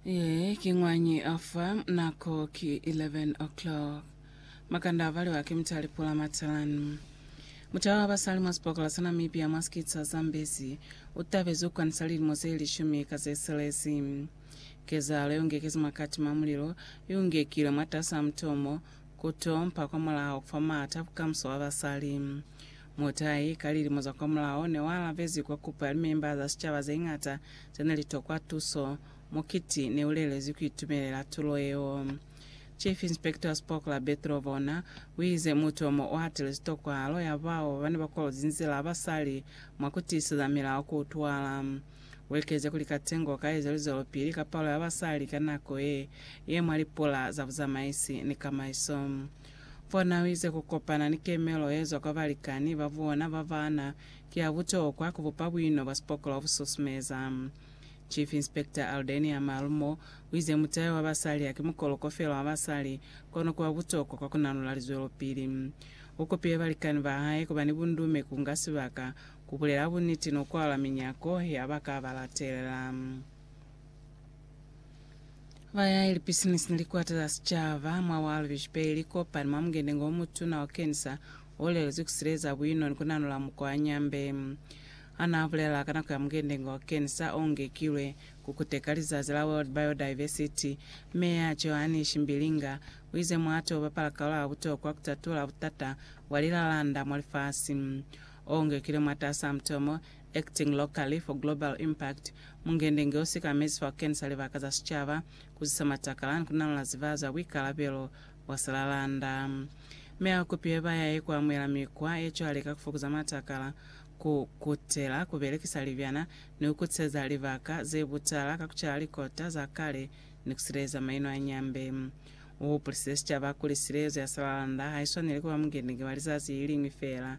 Ye ki ñwañi ofa nako ki 11 o'clock. Makanda avaliwa ki mutali Pula Matalanu. Mutau wa basali mwa sipokola sa Namibia mwa sikiti sa Zambezi utabezi ukwanisa lilimo ze lishumi ka ze selezi. Kezahalo yeungekezi mwa kati mwa mulilo iungekile mwatasi a mutomo kutompa kwamulaho kufa maata a bukamuso bwa basali. Mutai, ka lilimo za kwamulaho, ne wa alabezi kwa kupo ya limemba za sicaba zeñata zene li tokwa tuso. Mukiti ne u lelezi ku itumelela tulo yeo. Chief Inspector wa Spoke la Bethel Vona u ize mutu yo mo u hatelezi tokwahalo ya bao ba ne ba kolozi nzila ba sa li mwa ku tiiseza milao ku utwala. U ekeze kuli katengo ka ezwe luzwelopili ka palo ya basali ka nako ye ye mwa lipula za buzamaisi ni kamaiso. Fo na wize ku kopana ni kemelo ye zwa kwa balikani ba bona ba bana ki ya butokwa ku bupa buino bwa sipokola bu susumeza. Chief Inspector Aldenia Marumo wize mutayo wa basali haki mukoloko fela wa basali kono kuba butokwa kwa kunanula lizwelopili. U kopile balikani ba hae kuba ni bundume ku nga sibaka, ku bulela buniti no kwalwa minyako ya ba ka ba latelela. Bayaeli pisinisi ni likwata za sicaba mwa wa lubeji peli kopani mwa mungendengo o mutuna wa Kensa o lelezwi ku sileza buino ni ku nanula mukwa Nyambe ana bulela ka nako ya mungendengo wa Kensa o ngekilwe ku kuteka lizazi la World Biodiversity. Meya Johanich Mbilinga uize mwa to bapala kalo ya butokwa ku tatula butata bwa lilalanda mwa lifasi o ngekilwe mwatasaa mutomo Acting Locally for Global Impact, Mungendenge o sikamezi fa ku kenisa libaka za sicaba, ku zisa matakala, ni ku nalola zivaha za buikalabelo bwa silalanda. Mi a kupile bayahi ku amuhela mikwa ye cwale ka ku fokoza matakala, ku kutela ku belekisa libyana, ni ku kutiseza libaka ze butala ka ku cala likota za kale ni ku sileleza maino a nyambe. U hupulisile sicaba kuli silezo ya silalanda ha i swaneli ku ba mungendenge wa lizazi le li liñwi feela,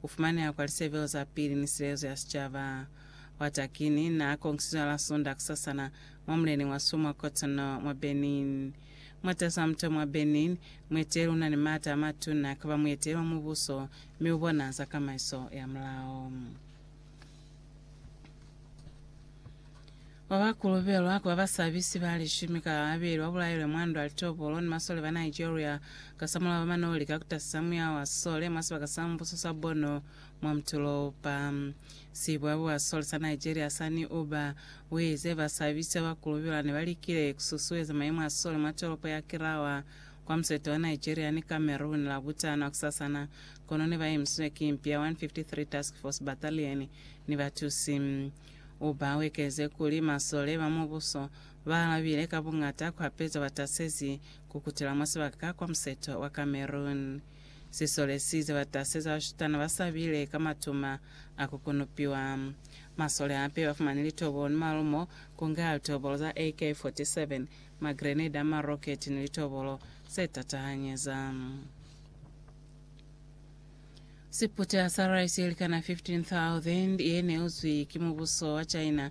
ku fumaneha kwa lisebelo za pili ni silezo ya sicaba. Watakini naa kongisizwe hala Sunda kusasana mwa mulening wa Soo mwa Cotonou, mwa Benin. Mwa tasa muto mwa Benin, mueteli una ni maata a matuna kaba mueteli wa mubuso mi ubona za kamaiso ya mulao. Ba ba kolobelwa ku ba basabisi ba lishumi ka babeli ba bulailwe mwa ndwa litopolo ni masole ba Nigeria kasamulaho mano lika ku tasisa muya wa sole mwa sibaka sa mubuso sa Borno mwa mutulopa. Sibwabwi bwa sole sa Nigeria Sani Uba buize basabisi ba ba kolobelwa ne ba likile ku susueza mayemo a sole mwa tolopo ya Kirawa kwa musete wa Nigeria ni Cameroon Labutano hakusasana kono ne ba emisizwe ki mpi ya 153 Task Force Battalion ni batusi U ba wekeze kuli, Masole ba Mubuso ba alabile ka buñata kwa peto ba tasezi ku kutela mwa sibaka ka kwa museto wa Cameroon. Sisole si ize ba tasezi bashutana ba sabile ka matuma a ku kunupiwa. Masole hape ba fumani litobolo ni malumo, ku nga litobolo za AK-47, magreneda, maroketi ni litobolo ze tatahanyeza. Siputa sa rice ye likana 15,000 ye ne uzwi ki mubuso wa China